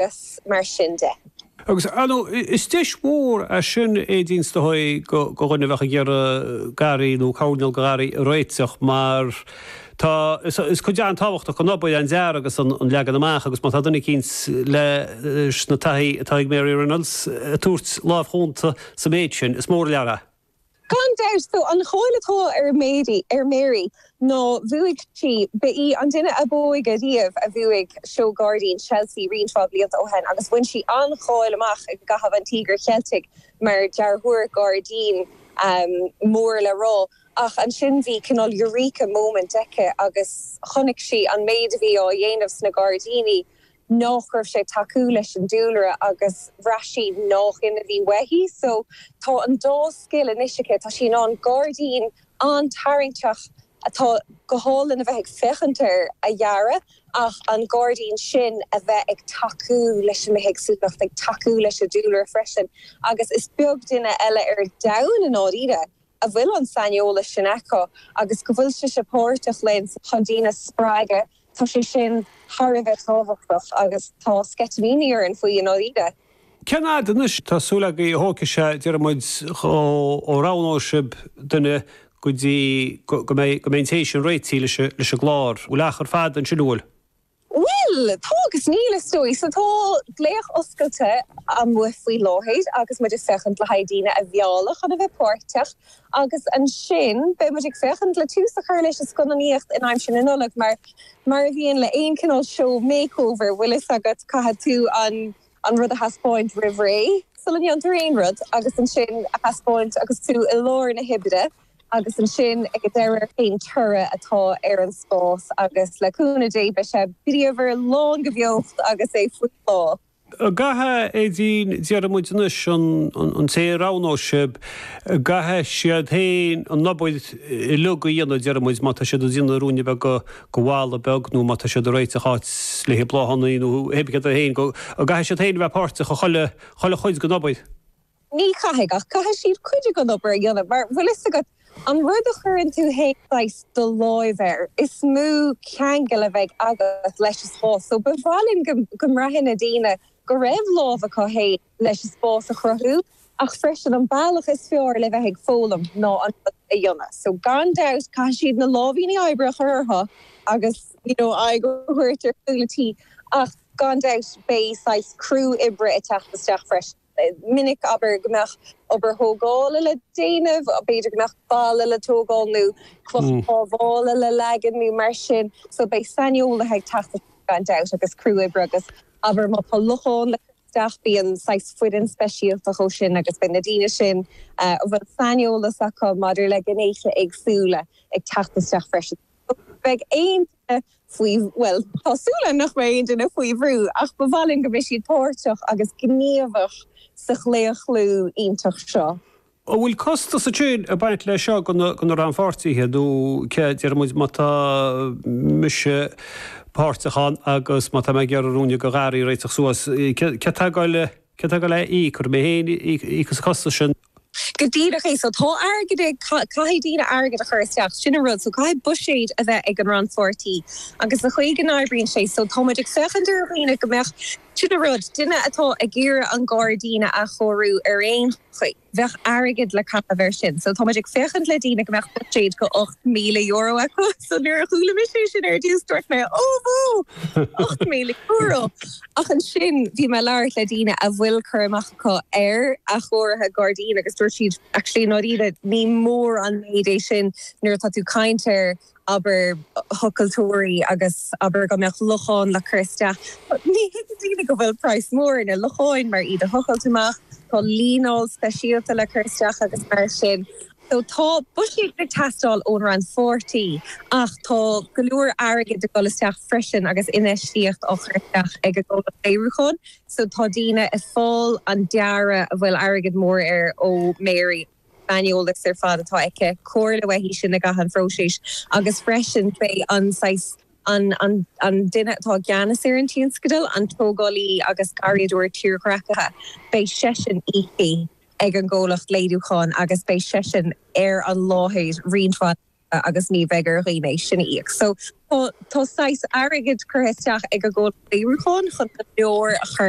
agus mar sin de. Agus is deis mhór í sin, Aedín, is dóigh, do dhuine a bheadh ag iarraidh garraí nó coirneál garraí a réiteach mar tá is cuid an-tábhachtach den obair an dearadh agus an leagan amach agus má tá duine eicínt leis an taithí atá ag Mary Reynolds ag tabhairt lámh chúnta sa méid sin, is mór an lear a. Gan dabht, tá an cháil atá ar Mary ar Mary ná bhuaigh sí, ba í an duine ab óige riamh a bhuaigh Seó Gairdín Chelsea roinnt mhaith blianta ó shin agus bhain sí an-cháil amach i gcaitheamh an Tíogair Cheiltigh mar dhearthóir gairdín mór le rá ach ansin bhí cineál eureka moment aici agus chonaic sí an méid a bhí á dhéanamh sna gairdíní nach raibh sé tacúil leis an dúlra agus bhraith sí nach in a bhí uaithi so tá an dá scil anois aici, tá sí in ann gairdín an-tarraingteach atá go hálainn a bheith ag féachaint air a dhearadh ach an gairdín sin a bheith ag tacú leis an mbithéagsúlacht, ag tacú leis an dúlra freisin agus is beag duine eile ar domhan i ndáiríre a bhfuil an saineolas sin acu agus go bhfuil sise páirteach linn chun daoine a spreagadh, tá sé sin thar a bheith tábhachtach agus tá sceitimíní orainn faoi i ndáiríre. Cén fhad anois atá súil agaibh a thógfaidh sé, déarfaidh muid, ó roghnóidh sibh duine go dtí go mbeidh, go mbeidh an té sin réitithe leis an gclár. Bhfuil achar fada ansin, an bhfuil? Bhuel! Tá agus níl, is dóigh. So tá glaoch oscailte amuigh faoi láthair agus muid ag féachaint le haghaidh daoine a mhealladh chun a bheith páirteach agus ansin beidh muid ag féachaint le tús a chur leis an scannánaíocht i ndiaidh na Nollag mar, mar a bhíonn le aon cineál seó makeover, bhfuil fhios agat, caithfidh tú an, an rud a thaispeáint roimh ré, sula ndéantar aon rud agus ansin a thaispeáint agus tú i lár na hoibre. Agus ansin ag deireadh, cén toradh atá ar an spás agus le cúnamh Dé beidh sé bríomhar, lán de bheocht agus é faoi bhláth. An gcaithfidh, Aedín, déarfaidh muid anois, an té a roghnóidh sibh, an gcaithfidh siad féin an obair uiliug a dhéanamh, déarfaidh muid, má tá siad ag déanamh ruainne beag de bhalla beag nó má tá siad ag réiteach áit le haghaidh bláthannaí nó, pé ar bith céard é féin, go gcaithfidh siad féin a bheith páirteach i chuile chuid den obair. Ní chaithfidh, ach caithfidh siad cuid den obair a dhéanamh, mar, bhfuil fhios agat, an rud a chuireann tú fhéin saghas, do lámh air, is mó ceangal a bheidh agat leis an spás, so ba mhaith linn go mbraithfeadh na daoine go raibh lámh acu fhéin leis an spás a chruthú, ach freisin an bealach is fearr le bheith ag foghlaim ná an rud a dhéanamh, so gan dabht caithfidh siad na láimhíní oibre a chur orthu agus you know aghaidh a thabhairt ar chúl an tí, ach gan dabht beidh saghas criú oibre ag teacht isteach freisin. minic, abair, go mbeadh obair thógála le déanamh, b'fhéidir go mbeadh balla le tógáil nó cloch pábhála le leagan nó mar sin. So beidh saineolaithe ag teacht isteach gan dabht agus criú oibre agus abair má tá lochán le cur isteach bíonn saghas foireann speisialta dhó sin agus beidh na daoine sin a bhfuil saineolas acu maidir le gnéithe éagsúla ag teacht isteach freisin. So beidh aon duine faoi, bhuel, tá súil agam nach mbeidh aon duine faoi bhrú, ach ba mhaith linn go mbeadh siad páirteach agus gníomhach sa chlaochlú iontach seo. An bhfuil costas ansin ag baint leis seo do na rannpháirtithe, nó cé a deir muid má tá mise páirteach ann agus má tá mé ag iarraidh ruainne de gharraí a réiteach suas, cé atá ag gabháil le. Cé atá ag gabháil le íoc? An orm féin íoc as an costas sin. Go díreach é. So tá airgead ag, caithfidh daoine airgead a chur isteach, sin an rud. So caithfidh buiséad a bheith ag an rannpháirtí agus an chaoi go n-oibríonn sé. So tá muid ag féachaint ar dhaoine go mbeadh, sin an rud, duine atá ag iarraidh an gairdín a athchóiriú ar aon chaoi. Bheadh airgead le caitheamh ar sin. So táimid ag féachaint le daoine go mbeadh buiséad go €8,000 acu. So nuair a chuala mise é sin ar dtús, dúirt mé, oh bhó! €8,000! Ach ansin bhí mé ag labhairt le daoine a bhfuil cur amach acu ar athchóiriú gairdín agus dúirt siad, actually i ndáiríre ní mór an méid é sin nuair atá tú ag caint ar abair, thochailteoirí agus abair go mbeadh lochán le cur isteach, ní thuigeann daoine go bhfuil price mór ar na locháin mar, iad a thochailt amach, tá líneáil speisialta le cur isteach agus mar sin. So tá buiséad ag teastáil ón rannpháirtí ach tá go leor airgid ag dul isteach freisin agus infheistíocht á chur isteach ag an gcomhlacht léiriúcháin. So tá daoine ag fáil an dearadh a bhfuil airgead mór air ó Mary. saineolas ar fad atá aici, comhairle uaithi sin i gcaitheamh an phróiséis agus freisin beidh an saghas, an, an, an duine atá i gceannas ar an tionscadal, an tógálaí agus garraíodóir tírdhreachaithe, beidh seisean íoctha ag an gcomhlacht léiriúcháin agus beidh seisean ar an láthair roinnt mhaith laethanta agus ní bheidh ar dhaoine é sin a íoc. So, tá, tá saghas airgid curtha isteach ag an gcomhlacht léiriúcháin chun go leor a chur.